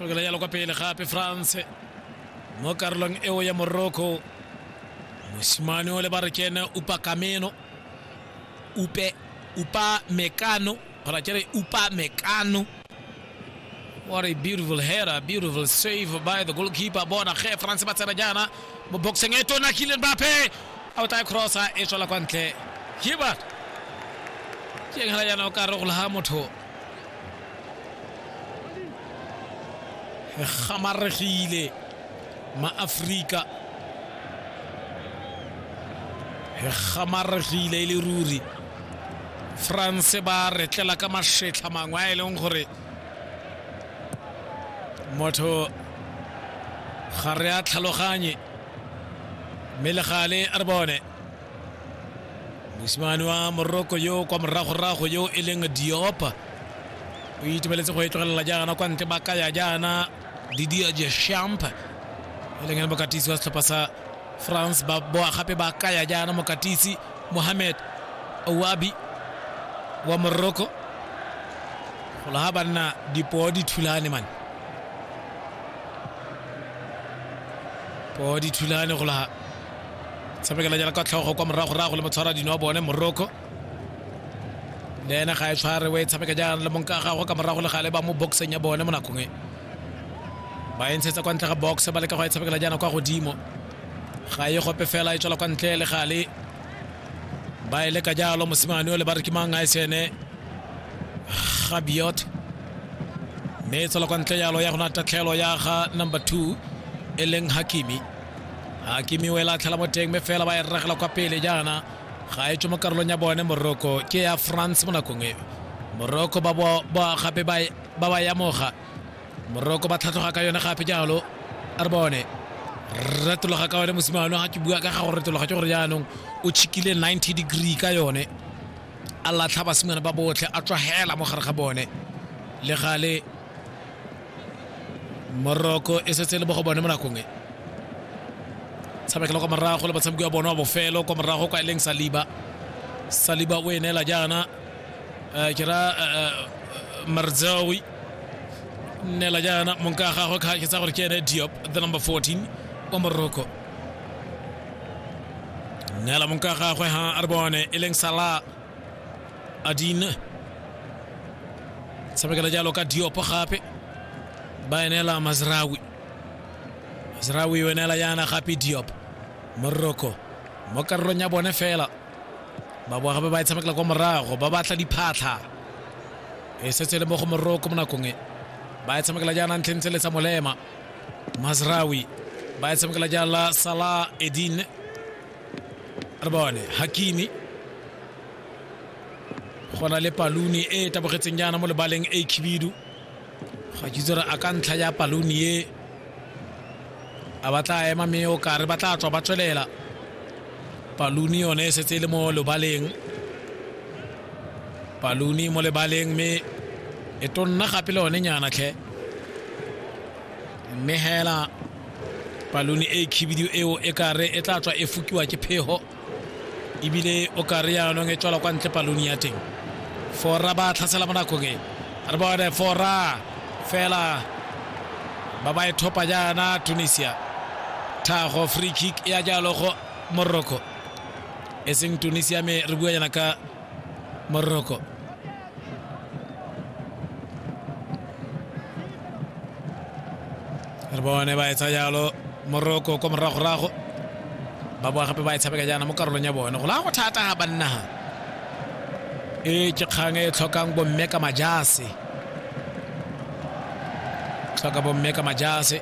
Lokela yalo kwa pele gape France mo karolong eo ya Morocco. Mosimane o le ba re ke ene Upa Kameno. Upe Upa Mekano gora ke re Upa Mekano. What a beautiful header, beautiful save by the goalkeeper. Bona ge France ba tsena jaana mo boxing e tona Kylian Mbappe. A o tla crossa e tswela kwa ntle. Ke ba ke ngela jaana o ka re go laha motho re gamaregile maaforika re gamaregile e le ruri france ba retlela ka mašetlha mangwe a e leng gore motho ga re a tlhaloganye mme le gale a re bone mosimane wa moroko yo kwa moragorago yo e leng diopa o itumeletse go e tlogelela jaana kwa ntle ba kaya jaana didia jeshamp e leng ene mokatisi wa setlhopha sa france ba boa gape ba kaya jaana mokatisi mohamed owabi wa moroko gola ga banna dipoo di thulane mane poo di thulane golaga tshamekela jana ka tlhogo kwa moragorago le motshwara dino wa bone morocco le ene ga e tshware o e tshameka jana le monka gago ka morago le gale ba mo boxeng ya bone mo nakong e ba e ntshetsa kwa ntle ga box ba leka go e tshamekela jana kwa godimo ga e gope fela e tswela kwa ntle le gale ba e leka jalo mosimane o le ba re ke mang a e sene gabiot mme e tswela kwa ntle jalo ya go na tatlhelo ya ga number two e leng hakimi a kimiwela a tlhela mo teng mme fela ba e rragela kwa pele jaana ga e tswe mo karolong ya bone morocco ke ya france mo nakong e morocco ba gape ba ba yamoga morocco ba tlhatlhoga ka yone gape jalo a re bone retologa ka yone mosimane ga ke bua ka ga go retologa ke gore jaanong o chikile 90 degree ka yone a latlha basimane ba botlhe a tswagela mo gare ga bone le gale moroko e setse e le mo go bone mo nakong e tshamekela kwa morago le batshameki wa bone wa bofelo kwa morago kwa e leng saliba saliba o e neela jaana eh, ke ra eh, eh, marzawi neela jaana monka ya gagwe ke tsa gore ke ene diop the number 14 wa moroko neela monka ya gagwe ha a re bone e leng sala adine tshamekela jalo ka diopo gape ba enela mazrawi mazrawi o enela yana gape diopo moroko mo karolong ya bone fela ba boa gape ba e tshamekela kwa morago ba batla diphatlha e setse e le mo go moroko mo nakong e ba e tshamekela jaana ntlheng tse le tsa molema mazrawi ba e tshamekela jaana sala edine re bone hakimi go na le paluni e e tabogetseng jaana mo lebaleng a khibidu ga kitse re a ka ntlha ya paluni e a ba tla ema mme o kare ba tla tswa ba tswelela paluni yone e setse e le mo lebaleng paluni mo lebaleng mme e tonna gape le one nyana tlhe mme hela palone e khibidu eo e kare e tla tswa e fukiwa ke phego ebile o kare yaanong e tswala kwa ntle palone ya teng fora ba tlhasela mo nakong e re bone fora fela ba ba e thopa jaana tunisia thago free kick ya jalo go morocco e seng tunisia me re bua jana ka morocco re bone ba etsa jalo morocco ko moragorago ba boa gape ba e tshameka jaana mo karolong ya bone go la go thata ga bannaga e ke kgang e tlhokang bomme ka majase tlhoka bomme ka majase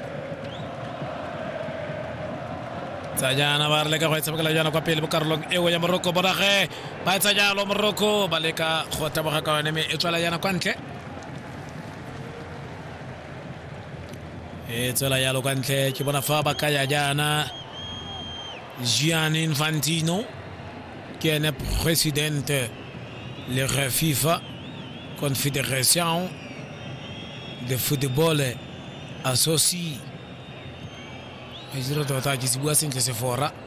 tsa jaana ba re leka go e tshamekela jaana kwa pele mo karolong eo ya moroko bonage ba etsa jalo moroko ba leka go taboga ka yone mme e tswela yana kwa ntle e tswela yalo kwa ntle ke bona fa ba ka ya jaana gianni infantino ke ene presidente le ge fifa confederation de football associ a dira tota ke se bua sentle sefora